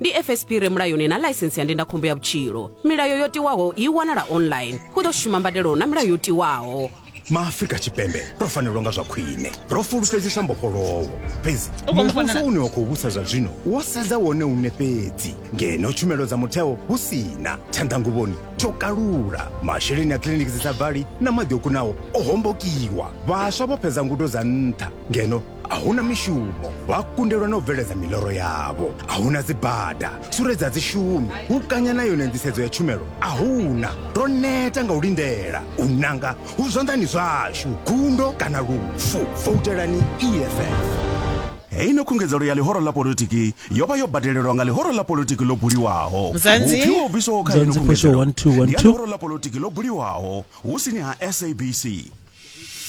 ndi fsp re mulayoni na ḽaisense ya ndindakhombo ya vhutshilo milayo yo tiwaho i wanala online hu ḓo shuma mbadelo na milayo yo tiwaho maafrika tshipembe ro fanelwa nga zwa khwine ro fulufhedzisa mbofholowo fhedzi muvhuso une wa khou vhusa zwa zwino wo sedza wone une fhedzi ngeno tshumelo dza mutheo hu si na tshanḓanguvhoni tsho kalula masheleni a kiliniki dzi sa vali na maḓi o kunaho o hombokiwa vhaswa vho fhedza ngudo dza nṱha ngeno a huna mishumo vha kundelwa na u bveledza miloro yavho a huna dzibada suredza dzishumi u kanya na yone nḓisedzo ya tshumelo a huna ro neta nga u lindela u nanga hu zwanḓani zwashu gundo kana lufu voutelani eff heino khungedzelo ya ḽihoro ḽa politiki yo vha yo badelelwa nga ḽihoro ḽa politiki ḽo buliwaho vhupfi ho bviswaho kha heino khungedzelo ndi ya ḽihoro ḽa politiki ḽo buliwaho hu sini ha sabc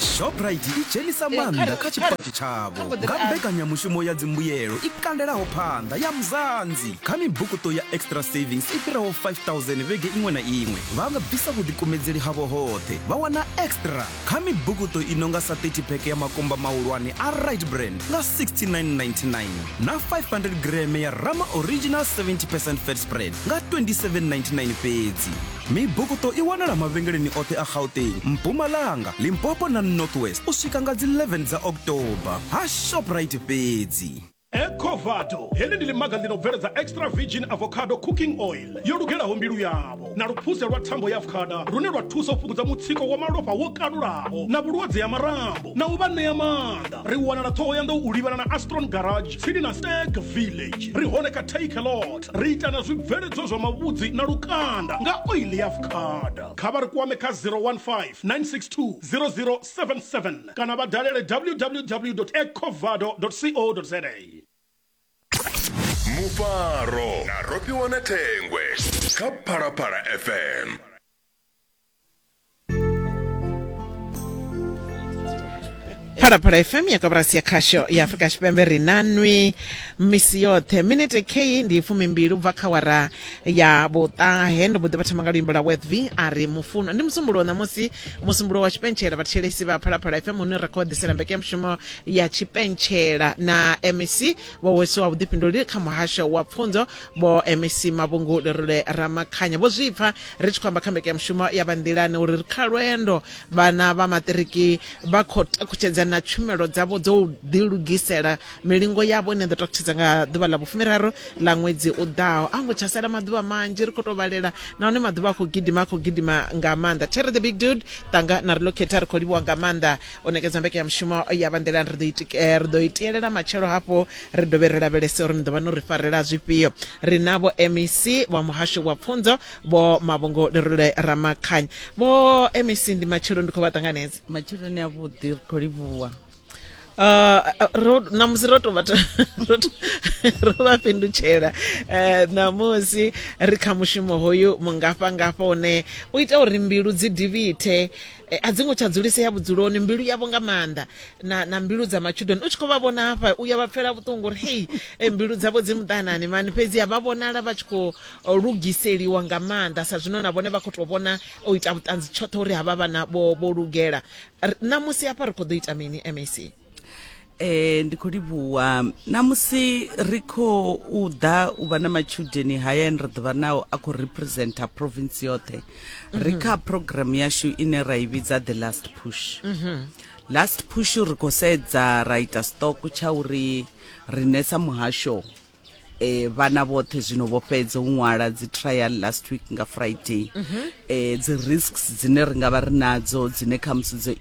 shoprite i dzhenisa maanḓa kha tshipatshi tshavho nga mbekanyamushumo ya dzimbuyelo i kandelaho phanḓa ya muzanzi kha mibukuṱo ya extra savings i fhiraho 5000 vhege iṅwe na iṅwe vha nga bvisa vhuḓikumedzeli havho hoṱhe vha wana extra kha mibukuṱo i nonga sa 30 pheke ya makumba mahulwane a right brand nga 6999 na 500 greme ya rama original 70 percent fat spread nga 2799 fhedzi Mibukuṱo i wanala mavhengeleni oṱhe a Gauteng, Mpumalanga, Limpopo na North West u swika nga dzi 11 dza October ha Shoprite fhedzi. Ecovado, heḽi ndi ḽimaga ḽi no bveledza extra virgin avocado cooking oil yo lugelaho mbilu yavho na luphuze lwa thambo ya avocada lune lwa thusa u fhungudza mutsiko wa malofha wo kalulaho na vhulwadze ha marambo na u vha ṋea maanḓa. Ri wanala Ṱhohoyanḓou u livhana na Astron Garage. tsini na stag village ri hone kha takelot ri ita na zwibveledzwa zwa mavhudzi na lukanda nga oili ya fukada kha vha ri kwame kha 015 962 0077 kana vha dalele www ecovado co za mufaro na rofhiwa na thengwe kha phalaphala fm phalaphala fm ya koporasi ya khasho ya afurika tshipembe ri na nwi misi yoṱhe minete kheyi ndi fumimbili ubva kha wara ya vhuṱahe ndo mboḓi vha thoma nga luimbo la wethv a ri mufuno ndi musumbulo ṋamusi musumbulo wa tshipentshela vhathetshelesi vha phalaphala fm hune ra khou ḓisela mbekanyamushumo ya tshipentshela na mec vho wesiwa vhuḓifhinduleli kha muhasho wa pfunzo vho mec mavhungu lerule ramakhanya vho zwipfa Ri tshi khou amba kha mbekanyamushumo ya Vha Nḓilani uri ri kha lwendo, vhana vha maṱiriki vha khou takutshedza na tshumelo dzavho dzo u ḓilugisela milingo yavho ine ya ḓo takutshedza nga ḓuvha ḽa vhufumiraru ḽa ṅwedzi u ḓaho. A hu ngo tsha sala maḓuvha manzhi, ri khou tou vhalela nahone maḓuvha a khou gidima, a khou gidima nga maanḓa. Terry the Big Dude, Tanga na Relocate, ri khou livhuwa nga maanḓa o nekedza mbekanyamushumo ya vha nḓilani ri ḓo itika eh, ri ḓo itielela matshelo hafho ri dovhe ri lavhelese uri ni ḓo vha no ri farela zwifhio ri na vho mec vha muhasho wa pfunzo vho mavhungo lerule ramakhanya vho mec ndi matshelo ndi khou vha ṱanganedza matsheloni a vhuḓi ri khou livhuwa Uh, ro- namusi ro to vha ta- ro to- ro vha fhindutshela Eh, namusi ri kha mushumo hoyu mungafha ngafha une u ita uri mbilu dzi divhithe Eh, a dzi ngo tsha dzulisea vhudzuloni mbilu yavho nga maanḓa na, na mbilu dza matshudeni u tshi khou vha vhona hafha u ya vha pfela vhuṱungu uri hei eh, mbilu dzavho dzi muṱanani mani fhedzi a vha vhonala vha tshi khou eh, lugiseliwa nga maanḓa sa zwino na vhone vha khou tou vhona o ita vhuṱanzi tshoṱhe uri havha vhana vho, vho lugela R- ṋamusi hafha ri khou ḓo ita mini mac e, ndi khou livhuwa na musi ri khou ḓa u vha na matshudeni haya ane ra ḓo vha nao a khou representa province yoṱhe ri kha programme yashu ine ra i vhidza the last push last push ri khou sedza ra ita stock tsha uri riṋe sa muhasho eh vhana vhoṱhe zwino vho fhedza u ṅwala dzi trial last week nga friday mm -hmm. eh dzi risks dzine ri nga vha ri nadzo dzine kha musi dzo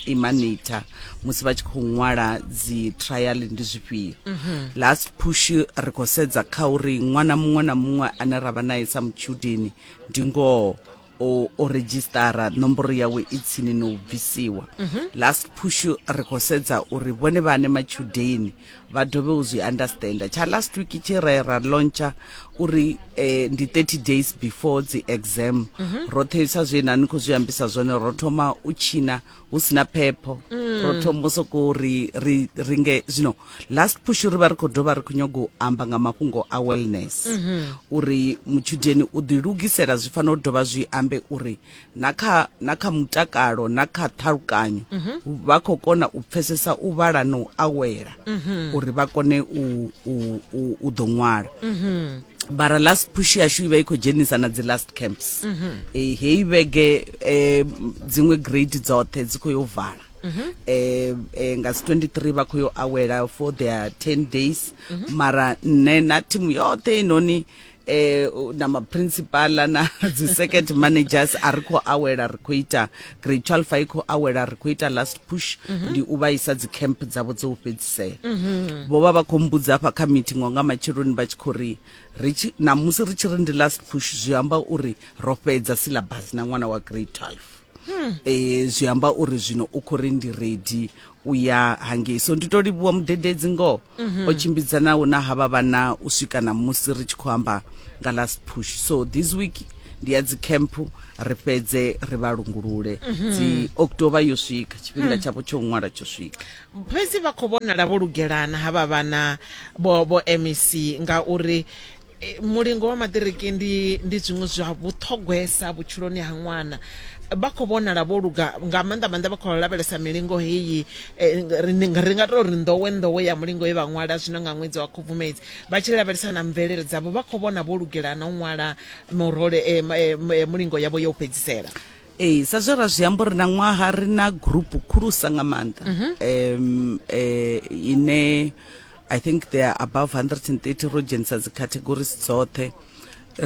imanita musi vha tshi khou ṅwala dzi trial ndi zwifhio mm -hmm. last push ri khou sedza kha uri ṅwana muṅwe na muṅwe ane ra vha nae sa mutshudeni ndi ngoho o o redzhisitara nomboro yawe i tsini no u bvisiwa mhm. last push ri khou sedza uri vhone vhane matshudeni vha dovhe u zwi understanda tsha last week tshi re ra launcha uri eh, ndi 30 days before dzi exam mhm. roṱhe sa zwe na ni khou zwi ambisa zwone ro thoma u tshina hu sina phepho mm. ro thoma sokou ri ri ri nge zwino last push ri vha ri khou dovha ri khou nyaga u amba nga mafhungo a wellness mm -hmm. uri mutshudeni u ḓilugisela zwi fanela u dovha zwi ambe uri na kha na kha mutakalo na kha ṱhalukanyo mm -hmm. vha khou kona u pfesesa u vhala na u awela mm -hmm. uri vha kone u, u, u, u ḓo ṅwala mm -hmm. bara last push yashu ivha i khou dzhenisa na dzi last camps mm -hmm. e, heyi vhege e, dziṅwe grade dzoṱhe dzi khou yo vala mm -hmm. e, e, nga dzi 23 vha khou yo awela for their 10 days mm -hmm. mara nṋe na thimu yoṱhe inoni eh na ma principal na dzi circuit managers a ri khou awela ri khou ita grade 12 a i khou awela ri khou ita last push mhm. ndi u vha isa dzi camp dzavho dza u fhedzisela mhm. vho vha vha khou mbudza hafha kha meeting wa nga matsheloni vha tshi khou ri namusi ri tshi ri ndi last push zwi amba uri ro fhedza syllabus na ṅwana wa grade 12 um hmm. eh, zwi amba uri zwino u khou ri ndi ready u ya hangei so ndi to livhuwa mudededzi ngoho mhm. o tshimbidza na u na havha vhana u swika na musi ri tshi khou amba nga last push so this week ndi ya dzi camp ri fhedze ri vha lungulule mhm. dzi october yo swika tshifhinga hmm. tshavho tsho ṅwala tsho swika fhedzi vha khou vhonala vho lugelana havha vhana vho vho mec ngauri E, mulingo wa maṱiriki ndi ndi zwiṅwe zwa vhuṱhogwesa vhutshiloni ha ṅwana vha khou vhonala vho luga nga maanḓa maanḓa vha khou lavhelesa milingo heyi e, ri ndi nga- ri nga tou ri nḓowe nḓowe ya mulingo ye vha ṅwala zwino nga ṅwedzi wa khubvumedzi vha tshi lavhelesa na mvelele dzavho vha khou vhona vho lugela na u ṅwala murole e, ma- e, ma- e, mulingo yavho ya u fhedzisela ee sa zwe ra zwi amba uri na ṅwaha ri na gurupu khulusa nga maanḓa em eh, ine i think there are above 130 ro dzhenisa dzi categories dzoṱhe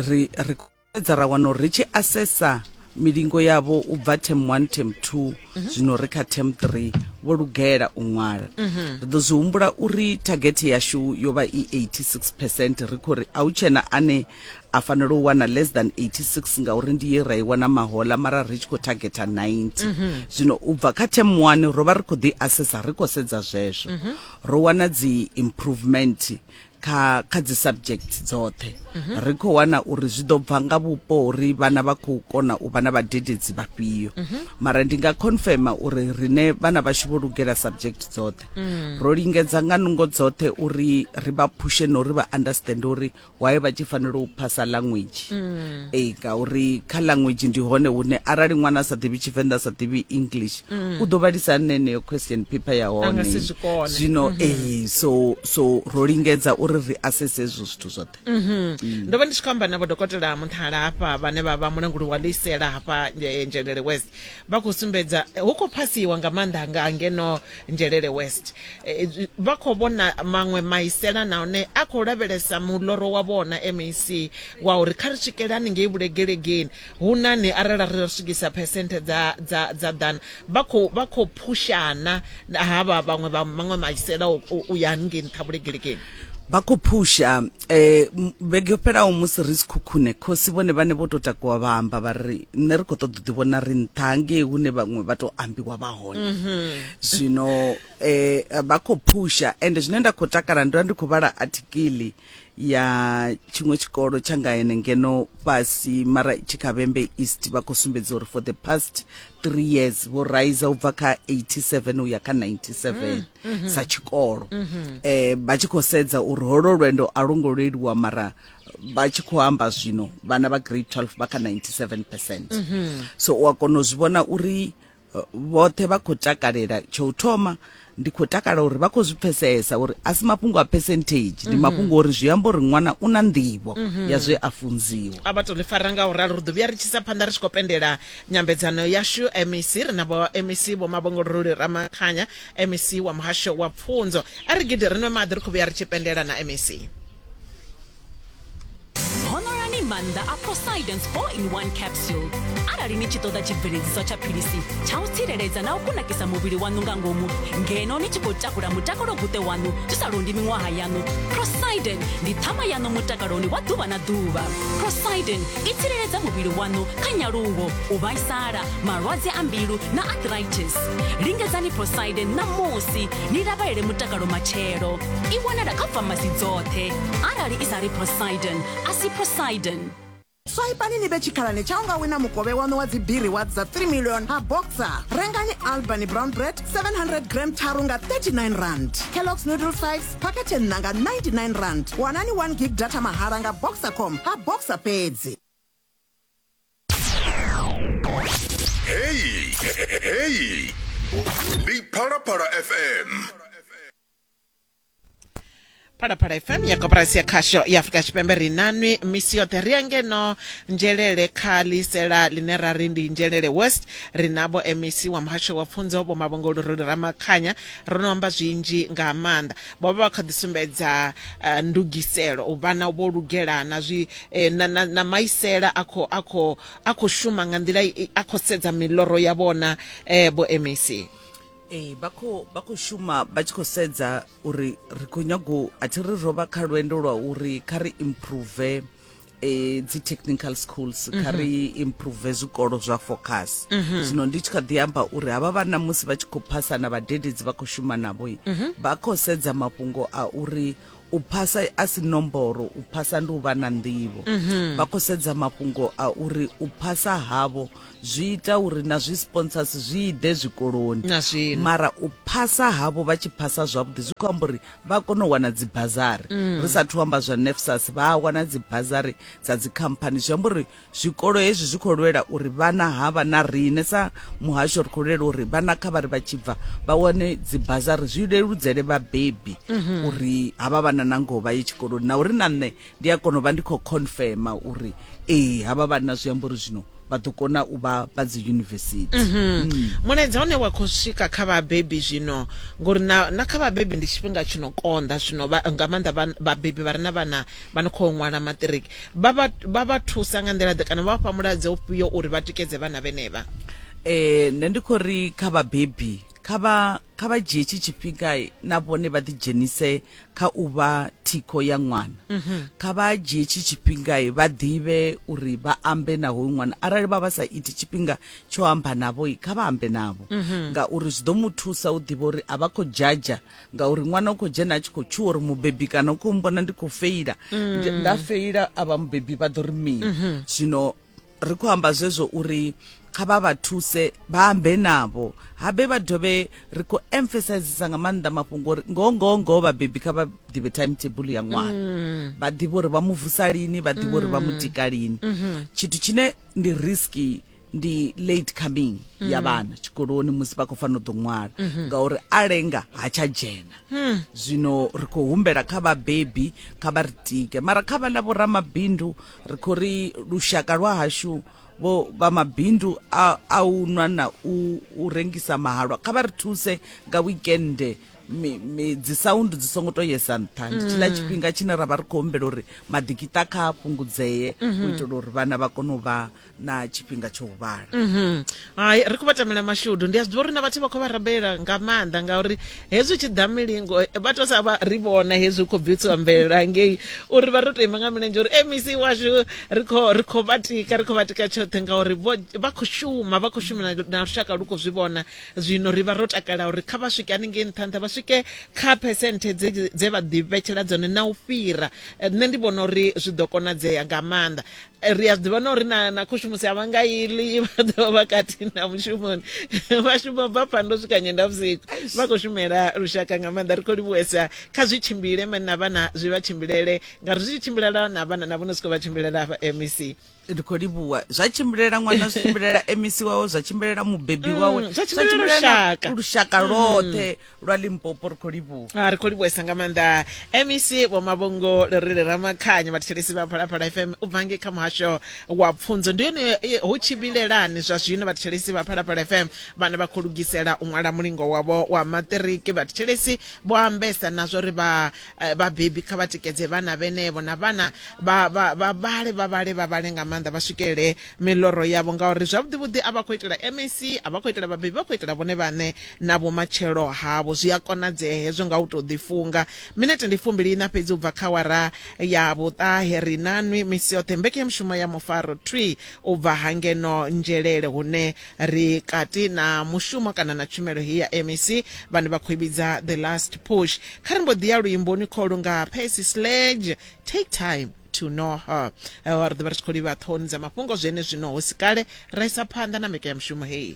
ri ri edza ra wana uri ri tshi assessa milingo yavho u bva term 1 term 2 mhm. zwino ri kha term 3 vho lugela u ṅwala mhm. ri ḓo zwi humbula uri target yashu yo vha i 86 percent ri khou ri a hu tshena ane a fanela u wana less than 86 ngauri ndi ye ra i wana mahola mara ri tshi khou targeta 90 mhm. zwino u bva kha term 1 ro vha ri khou ḓi assesa ri khou sedza zwezwo ro wana dzi improvement kha kha dzi subject dzoṱhe mhm. ri khou wana uri zwi ḓo bva nga vhupo uri vhana vha khou kona u vha na vhadededzi vhafhio mhm. mara ndi nga confirma uri rine vhana vhashu vho lugela subject dzoṱhe mm. ro lingedza nga nungo dzoṱhe uri ri vha phushe na uri vha understand uri waye vha tshi fanela u phasa language mm. ee eh, ngauri kha language ndi hone hune arali ṅwana a sa ḓivhi tshivenḓa a sa ḓivhi english mm. u ḓo vhalisa hani neneyo question paper ya hone zwino mm-hmm. ee eh, so so ro lingedza uri ri asese ezwo zwithu zwoṱhe mm-hmm. mm. ndo vha ndi tshi khou amba na vhodokotela munthala hafha vhane vha vha mulanguli wa ḽisela hafha nzhelele west vha khou sumbedza hu khou phasiwa nga maanḓa nga ngeno njelele west eh, vha khou vhona maṅwe maisela nahone a khou lavhelesa muloro wa vhona mac wa uri kha ri swikele haningei vhulegelegeni hu nani arali ri swikisa phesenthe dza dza dza ḓana vha khou vha khou phushana havha vhaṅwe vha maṅwe maisela u ya haningei nṱha vhulegelegeni vha khou phusha um eh, vhege yo fhelaho musi ri si khukhune khosi vhone vhane vho tou takuwa vha amba vha ri nṋe ri khou ṱoḓa u ḓivhona ri nṱha ngei hune vhaṅwe vha tou ambiwa vha hone mhm. zwino um vha khou phusha ende zwine nda khou takala ndo vha ndi khou vhala athikili ya tshiṅwe tshikolo tsha nga ene ngeno fhasi mara tshikhavhembe east vha khou sumbedza uri for the past three years vho raiza u bva kha 87 u ya kha 97 mm. mm -hmm. sa tshikolo mm -hmm. eh vha tshi khou sedza uri holo lwendo a longo leluwa mara vha tshi khou amba zwino vhana vha grade 12 vha kha 97% mm -hmm. so u a kona u zwi vhona uri eh, vhoṱhe vha khou takalela tsho u thoma ndi khou takala uri vha khou zwi pfesesa uri a si mafhungo a percentage ndi mhm. mafhungo uri zwi amba uri ṅwana u na nḓivho mhm. ya zwe a funziwa a vha tou ḽi fara nga u ralo ri ḓo vhuya ri tshisa phanḓa ri tshi khou pendela nyambedzano yashu mec ri na vho mec vho mavhongolololi ramakhanya MEC wa Muhasho wa Pfunzo a ri gidi ri nwe maḓi ri khou vhuya ri tshi pendela na MEC. Honoloni maanḓa a Poseidon's 4 in 1 capsule arali ni tshi ṱoḓa tshibveledziswa tsha philisi tsha u tsireledza na u kunakisa muvhili waṋu nga ngomu ngeno ni tshi khou takula mutakalo guṱe waṋu zwi sa londi miṅwaha yaṋu. Poseidon ndi ṱhama yaṋu mutakaloni wa ḓuvha na ḓuvha. Poseidon i tsireledza muvhili waṋu kha nyaluwo, u vhaisala, malwadze a mbilu na arthritis lingedzani proside ṋamusi ni lavhelele mutakalo matshelo i wanala kha famasi dzoṱhe arali i sa ri prosiden a si prosiden swaipani ni vhe tshikhalani tsha unga wina mukovhe waṋu wa dzibiri wa dza 3 million ha boxer rengani albany brown bread 700 gram tharu nga 39 rand kellogs noodle 5 phakhethe nṋa nga 99 rand wanani 1 gig data mahala nga boxercom ha boxer fhedzi Hey, hey, hey. Big Para Para FM. phalaphala fm ya koporasi ya khasho ya afurika tshipembe ri nanwi misi yoṱhe ri ya ngeno nzhelele kha ḽisela ḽine ra ri ndi nzhelele west ri na vho mec wa muhasho wa pfunzo vho mavhongoloroli ramakhanya ro no amba zwinzhi nga maanḓa vho vha vha kha ḓi sumbedza uh, ndugiselo u vhana vho lugela na zwi eh, na, na, na maisela a khou a khou a khou shuma nga nḓila i- a khou sedza miloro ya vhona eh, vho mec ee vha khou vha khou shuma vha tshi khou sedza uri ri khou nyago a thi ri ro vha kha lwendo lwa uri kha ri improve e, dzi technical schools mm -hmm. kha ri improve zwikolo zwa focus mm -hmm. zwino ndi tshi kha ḓi amba uri havha vhana musi vha tshi khou phasa na vhadededzi vha khou shuma navho mm -hmm. vha khou sedza mafhungo a uri u phasa a si nomboro u phasa ndi u vha na nḓivho mm -hmm. vha khou sedza mafhungo a uri u phasa havho zwi ita uri na zwi sponsors zwi ide zwikoloni mara u phasa havho vha tshi phasa zwavhuḓi zwi khou amba uri vha kona u wana dzi bazari mm. ri sathu amba zwa nefsas vha a wana dzi bazari dza dzi company zwi amba uri zwikolo hezwi zwi khou lwela uri vhana havha na riṋe sa muhasho ri khou lwela uri vhana kha vha ri vha tshi bva vha wane dzi bazari zwi leludzele vhabebi mm -hmm. uri havha vhana na ngoho vha ye tshikoloni na uri na nṋe Ndi a kona u vha ndi khou confirma uri ee havha vhanna zwi amba uri zwino vha ḓo kona u vha vha dzi yunivesithi mm. mulaedza une wa khou swika kha vhabebi zwino ngori na, na kha vhabebi ndi tshifhinga tshi no konḓa zwino nga maanḓa vhabebi vha re na vhana vha no khou ṅwala maṱiriki vha vha thusa nga nḓila ḓe kana vha vha fha mulaedza ufhio uri vha tikedze vhana vhenevha um nṋe ndi khou ri kha vhabebi kha vha kha vha dzhie tshi tshifhinga na vhone vha ḓidzhenise kha u vha thikho ya ṅwana mhm. kha vha dzhie tshi tshifhinga vha ḓivhe uri vha ambe na hoyu ṅwana arali vha vha sa iti tshifhinga tsho amba navho kha vha ambe navho mhm. ngauri zwi ḓo mu thusa u ḓivha uri a vha khou dzhadzha ngauri ṅwana u khou dzhena a tshi khou tshuwa uri mubebi kana u khou mbona ndi khou feila mm. nda feila a vha mubebi vha ḓo ri mini mhm. zwino ri khou amba zwezwo uri kha vha vha thuse vha ambe navho habe vha dovhe ri khou emphasizesa nga maanḓa mafhungo uri ngoho ngoho ngoho vhabebi kha vha ḓivhe time table ya ṅwana mm. vha ḓivhe uri vha mu vusa lini vha ḓivhe uri vha mu mm. tika lini mm-hmm. tshithu tshine ndi riski ndi late coming ya mm. vhana tshikoloni musi vha khou fanela u ḓo ṅwala mm-hmm. ngauri a lenga ha tsha dzhena hmm. zwino ri khou humbela kha vhabebi kha vha ri tike mara kha vha ḽa vhoramabindu ri khou ri lushaka lwa hashu vho vha mabindu a, a u nwa na u, u rengisa mahalwa kha vha ri thuse nga wikende dzi sound dzi songo to yesa nṱha ndi tshila mm. tshifhinga tshine ra vha ri khou humbela uri maḓikita kha fhungudzee u mm-hmm. itela uri vhana vha kone u vha na tshifhinga tsho huvhala mhm. hai ri khou vha tamela mashudu ndi a zwi ḓivha uri na vhathu vha khou vha rabela nga maanḓa ngauri hezwi tshi ḓa milingo eh, vha to sa vha ri vhona hezwi khou bvisiwa mvelelo ngei uri vha ri to ima nga milenzhe uri mec eh, washu ri khou ri khou vha tika ri khou vha tika tshoṱhe ngauri vha khou shuma vha khou shumela na lushaka lu khou zwi vhona zwino ri vha ro takala uri kha vha swike haningei nṱha nṱha vha swike kha phesenthe dze vha ḓivhetshela dzone na u fhira eh, nṋe ndi vhona uri zwi ḓo konadzea nga maanḓa Eh, ri a ḓivha na uri na na khushumusi a vha nga ili vha ḓovha vha kati na mushumoni vha shuma bva phando swika nyenda vhusiku vha khou shumela lushaka nga maanḓa ri khou livhuwesa kha zwi tshimbile mani na vhana zwi vha tshimbilele ngauri zwi tshi tshimbilela na vhana na vhono siko vha tshimbilela hafha mec ndi khou livhuwa zwa tshimbilela ṅwana zwi tshimbilela mec wawe zwa tshimbilela mubebi mm, wawe zwa tshimbilela lushaka mm. loṱhe lwa limpopo ri khou livhuwa a ah, ri khou livhuwesa nga maanḓa mec vho mavhongo ri ri ramakhanya vhathetshelesi vha phalaphala fm u bva ngei kha muhasho wa pfunzo ndi yone eh, hu tshi vhilelani zwa zwino vhathetshelesi vha phalaphala fm vhane vha khou lugisela u ṅwala mulingo wavho wa maṱiriki vhathetshelesi vho ambesa na zwo ri eh, vhabebi kha vha tikedze vhana vhenevho na vhana vha vhale vha vhale vha vhale nga maanḓa vha swikelele miloro yavho ngauri zwavhuḓivhuḓi a vha khou itela mec a vha khou itela vhabebi vha khou itela vhone vhaṋe na vhumatshelo havho zwi a konadzea hezwo nga u tou ḓifunga minete ndi fumbili ina fhedzi u bva kha wara ya vhuṱahe ri na nwi misi yoṱhe mbekhe mushumo ya mufaro twi u bva ha ngeno nzhelele hune ri kati na mushumo kana na tshumelo heyi ya mec vhane vha khou i vhidza the last push kha ri mbo ḓi ya luimboni kholu nga percy sledge take time to know her eh, wa ri ḓivha ri tshi khou livha ṱhohoni dza mafhungo zwene zwino hu si kale ra isa phanḓa na mbekanyamushumo heyi